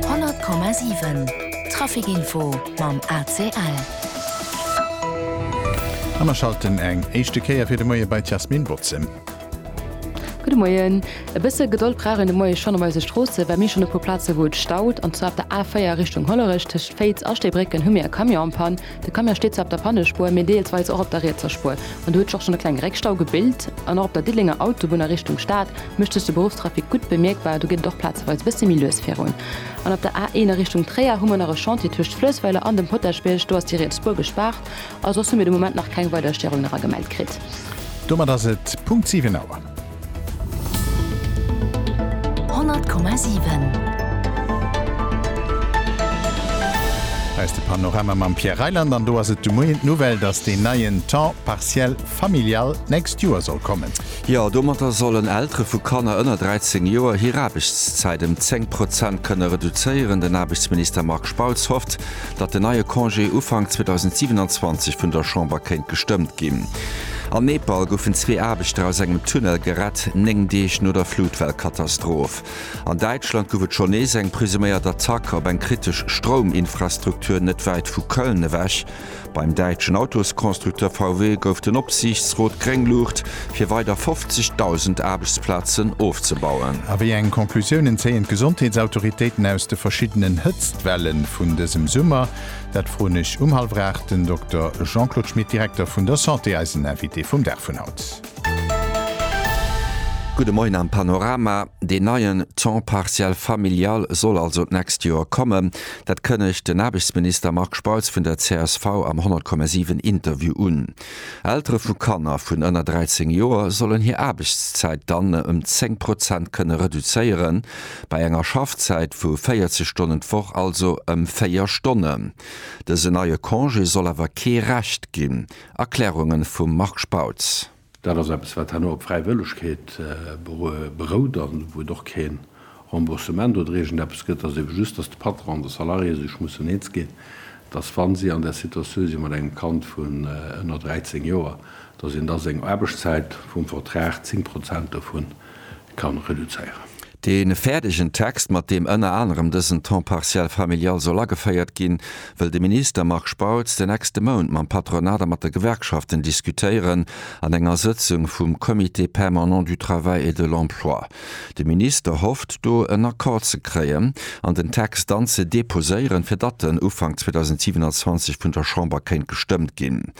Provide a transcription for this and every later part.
100,7 Trafic Info mam ACL. A mer schalten eng éischte Kéier fir de Moie bei d'Jasmine Bautzen. Gudde Moien. E bësse Gedold brauch een de Moie schonn op eise Stroosse, well mir schonn e puer Plaze wou et staut. An zwar op der A4 Richtung Hollerech, tëscht Féiz a Stéibrécken hu mir e Camion an Panne. De Camion steet zwar op der Pannespuer, mee deelsweis och op der rietser Spuer. An do huet sech och schonn e klenge Réckstau gebilt. An och op der Diddelenger Autobunn a Richtung Stad mécht sech de Beruffstrafic gutt bemierkbar, do geet et och plazeweis e bësse méi lues virun. An op der A 1 a Richtung Tréier hu mer nach e Chantier tëscht Fluessweiler an dem Potaschbierg, do ass déi riets Spuer gespaart. A soss hu mir de Moment nach keng weider Störungen era gemellt kritt. Domat ass et Punkt 7 Auer. Hei ass de Panorama mam Pierre Reyland an do ass et de Moien d'Nouvelle, dass deen neien Temps partiel familial d'nächst Joer soll kommen. Jo, domatter sollen Eltere vu Kanner ënner 13 Joer hir Aarbechtszäit ëm 10 Prozent kënne reduzéieren. Den Aarbechtsminister Marc Spautz hofft, datt den neie Congé Ufank 2027 vun der Chamber kéint gestëmmt ginn. An Nepal goufen zwee Aarbechter aus engem Tunnel gerett, néng Deeg no der Flutwellkatastroph. An Däitschland gouf et schonn nees eng presuméiert Attack op eng kritesch Strouminfrastruktur net wäit vu Köln ewech. Beim däitschen Autosconstructeur VW gouf den Opsiichtsrot gréng Luucht fir weider 50.000 Aarbechtsplazen ofzebauen. A wéi eng Conclusiounen zéien d'Gesondheetsautoritéiten aus de verschiddenen Hëtztwelle vun dësem Summer? Dat froen ech um hallwer 8 den Dokter Jean-Claude Schmit, Direkter vun der Santé, eisen Invité vum Dag vun haut. Gudde Moien am Panorama. Deen neien Temps partiel familial soll also d'nächst Joer kommen. Dat kënnegt den Aarbechtsminister Marc Spautz vun der csv am 100,7 Interview un. Eltere vu Kanner vun ënner 13 Joer sollen hir Aarbechtszäit dann ëm 10 Prozent kënne reduzéieren, bei enger Schaffzäit vu 40 Stonnen d'Woch also ëm 4 Stonnen. Dësen neie Congé soll awer kee Recht ginn. Erklärunge vum Marc Spautz. Dat ass eppes, wat herno op Fräiwëllegkeet berout an wou et och kee Remboursement oder iergend eppes gëtt, ass ebe just, dass de Patron an de Salarié sech mussen eens ginn, dass, wa si an där Situatioun si mat engem Kand vun ënner 13 Joer, dass een da seng Aarbechtszäit vum Vertrag 10 Prozent dovu ka reduzéieren. Dee fäerdegen Text, mat deem ënner anerem dësen Temps partiel familial soll ageféiert ginn, wëll de Minister Marc Spautz den nächste Mount mam Patronat a mat de Gewerkschaften diskutéieren an enger Sëtzung vum Comité permanent du travail et de l'emploi. De Minister hofft do en Accord ze kréien an den Text dann ze deposéieren, fir datt en Ufank 2027 vun der Chamber kéint gestëmmt ginn.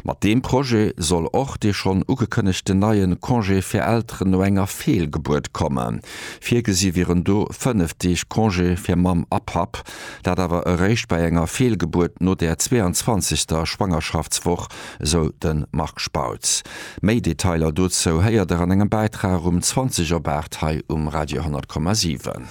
Mat deem Projet soll och dee schonn ugekënnegten neie Congé fir Elteren no enger Feelgebuert kommen. Virgesi wieren do fënnef Deeg Congé fir Mamm a Papp, dat awer eréischt bei enger Feelgebuert no der 22. Schwangerschaftswoch esou de Marc Spautz. Méi Detailer dozou héiert der an engem Bäitrag um 20 op 8 hei um Radio 10,7.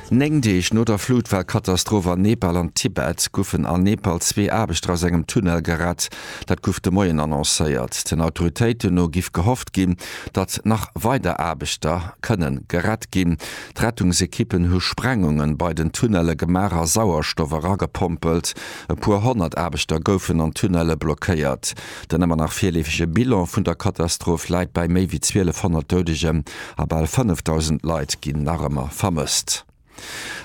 Néng Deeg no der Flutwell-Katastroph an Nepal an Tibet goufen a Nepal zwee Aarbechter aus engem Tunnel gerett. Dat gouf de Moien annoncéiert. Den Autoritéiten no giff gehofft ginn, datt nach weider Aarbechter kënne gerett ginn. D'Rettungsekippen hu Sprengungen bei den Tunnele gemaach a Sauerstoff eragepompelt. E puer honnert Aarbechter goufen an Tunnelle blockéiert. Den ëmmer nach virleefege Bilan vun der Katastroph läit bei méi wéi 1.200 Doudegen a bal 5.000 Leit ginn nach ëmmer vermësst.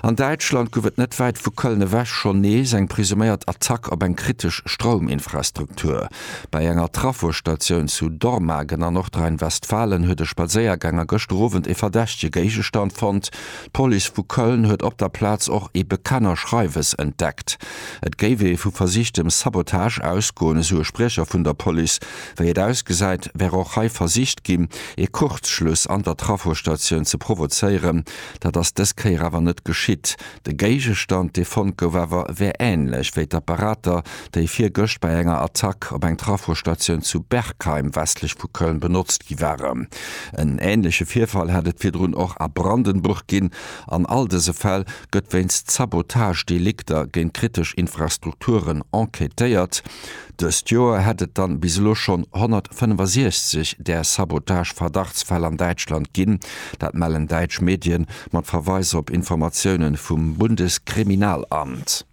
An Däitschland gouf et net wäit vu Köln ewech schonn nees eng presuméiert Attack op eng kritesch Strouminfrastruktur. Bei enger Trafostatioun zu Dormagen an Nordrhein-Westfalen huet e Spadséierganger gëschter Owend e verdächtege Géigestand fonnt. D'Police vu Köln huet op der Plaz och ee Bekennerschreiwes entdeckt. Et géif ee vu versichtem Sabotage ausgoen, esou e Spriecher vun der Police. Wéi et ausgesäit, wär och hei versicht ginn, ee Kuerzschluss an der Trafostatioun ze provozéieren. Dat ass dës Kéier awer net geschitt. De Géigestand, dee fonnt gouf awer, wär änlech wéi d'Apparater, déi virgëscht bei enger Attack op eng Trafostatioun zu Bergheim westlech vu Köln benotzt gi waren. En änleche Virfall hätt et virdrun och a Brandenburg ginn. An all dëse Fäll gëtt wéinst Sabotagedelikter géint kritesch Infrastrukturen enquêtéiert. Dëst Joer hätt et dann bis elo schonn 165 där Sabotage-Verdachtsfäll an Däitschland ginn. Dat mellen däitsch Medien mat Verweis op Informatiounen vum Bundeskriminalamt.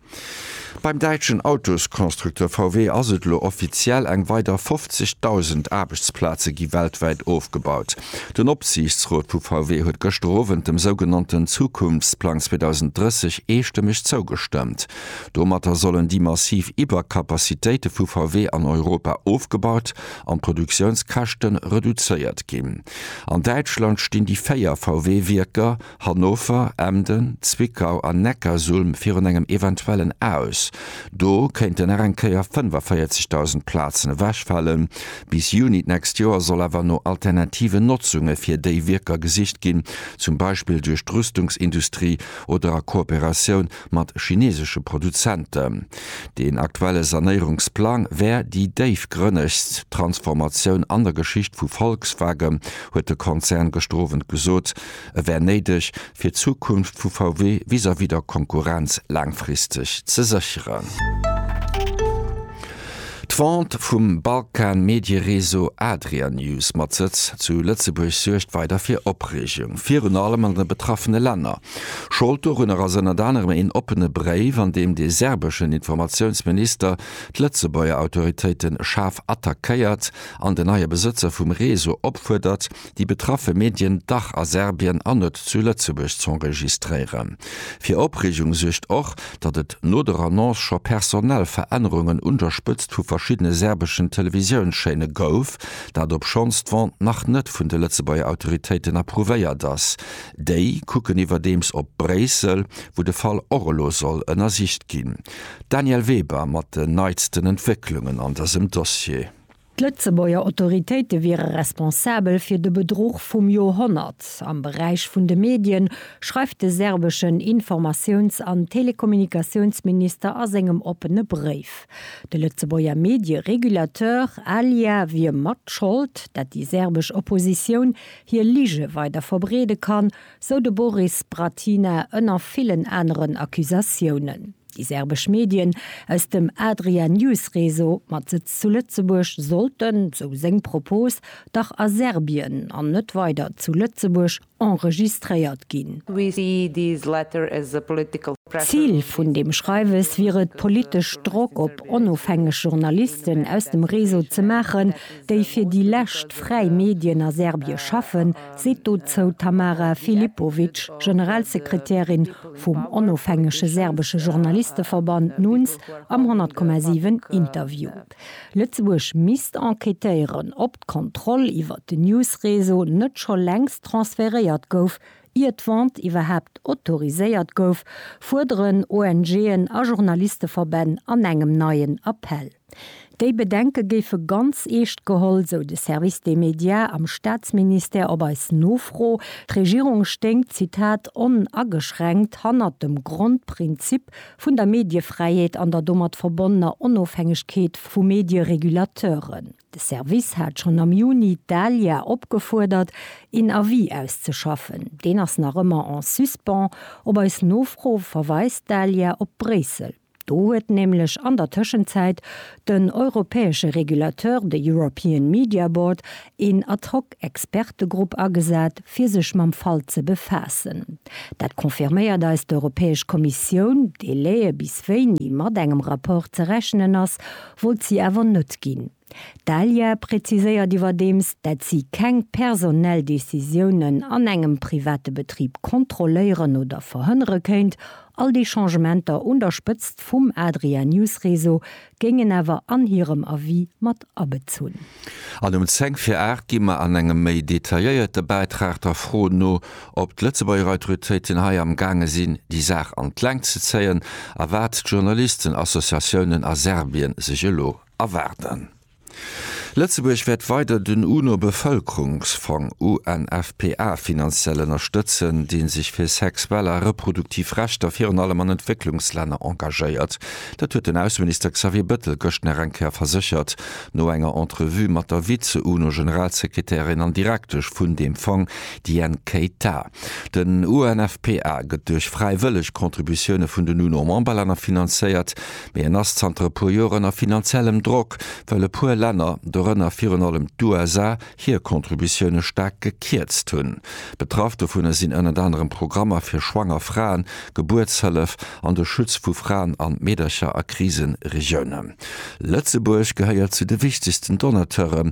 Beim däitschen Autosconstructeur VW ass et elo offiziell, Eng weider 50.000 Aarbechtsplaze gi weltwäit ofgebaut. Den Opsiichtsrot vu VW huet gëschter Owend dem sougenannten Zukunftsplang 2030 eestëmmeg zougestëmmt. Domatter sollen déi massiv Iwwercapacitéite vu VW an Europa ofgebaut an d'Produktiounskäschte reduzéiert ginn. An Däitschland stinn déi véier VW-Wierker, Hannover, Emden, Zwickau an Neckarsulm virun engem eventuellen Aus. Do kéinten nach eng Kéier 45.000 Plazen ewechfalen. Bis Juni d'nächst Joer soll awer no alternativen Notzunge fir déi Wierker gesicht ginn, zum Beispill duerch d'Rüstungsindustrie oder a Kooperatioun mat chinesesche Produzenten. Deen aktuelle Sanéierungsplang wär déi déifgrënnegst Transformatioun an der Geschicht vu Volkswagen, huet de Konzern gëschter Owend gesot. E wär néideg, fir d'Zukunft vu VW vis-à-vis der Konkurrenz laangfristeg ze sécheren. D'Vente vum Balkan Mediereseau Adria News mat Sëtz zu Lëtzebuerg suergt weider fir Opreegung, virun allem an de betraffene Länner. Schold dorunner ass ënnert anerem een oppene Bréif, an deem de serbeschen Informatiounsminister d'Lëtzebuerger Autoritéite schaarf attackéiert an den neie Besëtzer vum Reseau opfuerdert, déi betraffe Medien dach a Serbien an net zu Lëtzebuerg z'enregistréieren. Fir Opreegung suergt och, datt et no der Annonce scho personell Verännerungen un der Spëtzt vu verschiddene serbeschen Televisiounschaîne gouf, dat obschonns d'Vente nach net vun de Lëtzebuerger Autoritéiten approuvéiert ass. Déi kucken iwwerdeems op Bréissel, wou de Fall och elo soll ënnersicht ginn. D'Danièle Weber mat den neitsten Entwécklungen an dësem Dossier. D'Lëtzebuerger Autoritéite wiere responsabel fir de Bedruch vum Joerhonnert am Beräich vun de Medien, schreift de serbeschen Informatiouns an Telekommunikatiounsminister a sengem oppene Bréif. De Lëtzebuerger Medieregulateur ALIA wier mat Schold, dat déi serbesch Oppositioun hir Lige weider verbreede kann, sou de Boris Bratina ënner villen aneren Accusatiounen. Déi serbesch Medien aus dem Adria News Réseau mat Sëtz zu Lëtzebuerg sollten, sou seng Propos, dach a Serbien an net weider zu Lëtzebuerg enregistréiert ginn. Zil vun deem Schreiwes wier et, politesch Drock op onofhängeg Journalisten aus dem Réseau ze maachen, déi fir déi lescht fräi Medien a Serbie schaffen, seet dozou d'Tamara Filipovic, Generalsekretärin vum onofhängege serbesche Journalisteverband NUNS am 100,7 Interview. Lëtzebuerg misst enquêtéieren, ob d'Kontroll iwwer den News-Réseau net scho längst transferéiert gouf, ier d'Vente iwwerhaapt autoriséiert gouf, fuerderen ONGen a Journalisteverbänn an engem neien Appell. Déi Bedenke géife ganz eescht geholl, sou de Service des médias am Staatsministère op eis Nofro. D'Regierung stéing, Zitat, onageschränkt hannert dem Grondprinzip vun der Mediefräiheet an der domat verbonnener Onofhängegkeet vu Medieregulateuren. De Service hat schonn am Juni d'ALIA opgefuerdert, een Avis auszeschaffen. Deen ass nach ëmmer en suspens. Op eis Nofro verweist d'ALIA op Bréissel. Do huet nämlech an der Tëschenzäit den europäesche Regulateur, de European Media Board, een ad hoc Expertegrupp agesat, fir sech mam Fall ze befaassen. Dat confirméiert eis d'Europäesch Kommissioun. Délaië bis wéini mat engem Rapport ze rechnen ass, wollt si awer net ginn. D'Alya präziséiert iwwerdeems, dat si keng personell Decisiounen an engem private Betrib kontrolléieren oder verhënnere kéint. All déi Changementer un der Spëtzt vum Adria News Réseau géingen awer an hirem Avis mat abezunn. An um 10 vir 8 gi mer an engem méi detailléierte Bäitrag der Fro no, ob d'Lëtzebuerger Autoritéiten hei am gaange sinn, déi Saach an d'Längt ze zéien a wat d'Journalistenassociatiounen a Serbien sech elo Erwaarden. Lëtzebuerg wäert weider den UNO-Bevëlkerungsfong, UNFPA, finanziell ënnerstëtzen, dee sech fir sexuell a reproduktiv Rechter virun allem an Entwécklungslänner engagéiert. Dat huet den Ausseminister Xavier Bettel gëscht nach eng Kéier verséchert, no enger Entrevue mat der Vize-UNO-Generalsekretärin an Direktesch vun deem Fong Diane Keita. Den UNFPA gëtt duerch fräiwëlleg Contributioune vun den UNO-Memberlänner finanzéiert, mee en ass zanter e puer Joer ënner finanziellem Drock, well e puer Länner, dorënner virun allem d'USA, hir Contributioune staark gekierzt hunn. Betraff dovunner sinn ënnert anerem Programmer fir schwanger Fraen, Gebuertshëllef an de Schutz vu Fraen a Meedercher a Krisenregiounen. Lëtzebuerg gehéiert zu de wichtegsten Donateure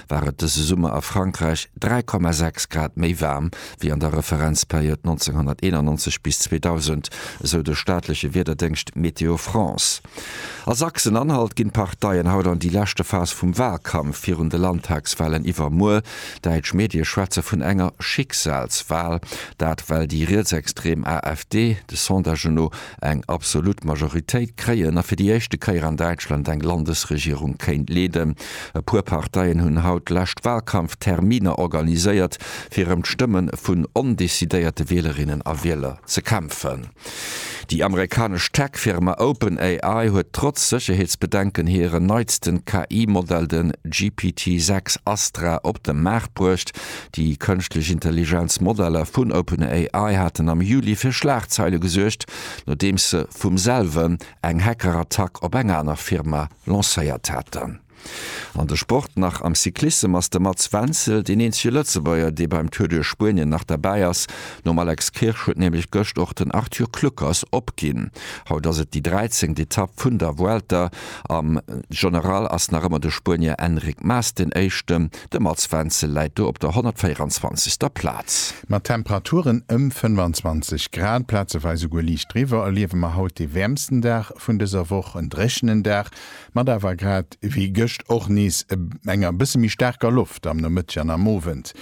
war et dëse Summer a Frankräich 3,6 Grad méi waarm wéi an der Referenzperiod 1991 bis 2000, esou de staatleche Wiederdéngscht Météo France. A Sachsen-Anhalt ginn d'Parteien haut an déi leschte Phas vum Walkampf virun de Landtagswalen iwwermuer. Däitsch Medie schwätze vun enger Schicksalswal, dat well déi rietsextrem AfD de Sondagen no eng absolut Majoritéit kréien a fir déi éischte Kéier an Däitschland eng Landesregierung kéint leeden. E puer Parteien hunn haut d'lescht Wahlkampfterminer organiséiert, fir ëm d'Stëmme vun ondecidéierte Wielerinnen a Wieler ze kämpfen. Déi amerikanesch Tech-Firma OpenAI huet trotz Sécherheetsbedenken hiren neitsten KI-Modell, den GPT-6 Astra, op de Maart bruecht. Déi kënschtlech Intelligenz Modeller vun OpenAI haten am Juli fir Schlagzeile gesuergt, nodeems se vum selwen eng Hackerattack op eng aner Firma lancéiert haten. An de Sport nach, Am Cyclissem ass de Mats Wenzel deen eenzege Lëtzebuerger, dee beim Tour duerch Spuenien nach derbäi ass. Nom Alex Kirsch huet nämlech gëscht och den Arthur Kluckers opginn. Haut ass et déi dräizengt Etapp vun der Vuelta. Am General ass nach ëmmer de Spuenier Enric Mas den Éischten. De Mats Wenzel läit do op der 124. Plaz. Mat Temperaturen ëm 25 Grad, plazeweis esouguer liicht driwwer, erliewe mer haut dee wäermsten Dag vun dëser Woch. En dréchenen Dag mat awer grad ewéi gëscht och nees enger bësse méi staarker Loft am Nomëtteg an am Owend.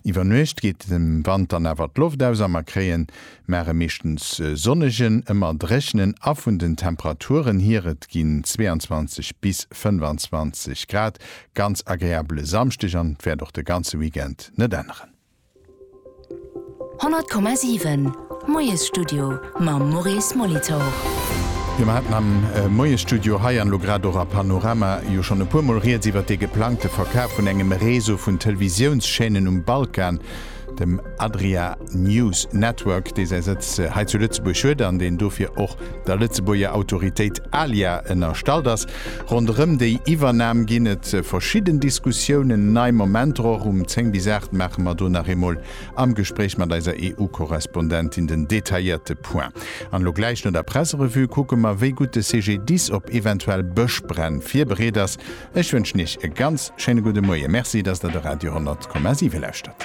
Iwwer Nuecht geet dem Wand dann awer d'Loft aus a mer kréien mar e meeschtens sonnegen, ëmmer dréchenen a vun den Temperaturen hier, et ginn 22 bis 25 Grad, ganz agreabele Samschdeg an wäert och de ganze Weekend net änneren. 100,7 Moiesstudio mam Maurice Molitor. Jo, mer haten am Moiesstudio hei an elo grad och a Panorama jo schonn e puermol Rieds iwwert dee geplangte Verkaf vun engem Réseau vun Televisiounschaînen um Balkan. dem Adria News Network, dee säi Sëtz hei zu Lëtzebuerg huet an deen dofir och der Lëtzebuerger Autoritéit ALIA ënnerstallt ass. Ronderëm déi Iwwernam ginn et verschidden Diskussiounen, nei Momenter och. Um 10 bis 8 maache mer do nach eemol am Gespréich mat eiser EU-Korrespondentin den detailléierte Point. An elo gläich no der Presserevue kucke mer, wéi gutt de CGDIS op eventuell Bëschbränn virbereet ass. Ech wënschen Iech e ganz schéine gudde Moie. Merci, dass Der de Radio 10,7 lauschtert.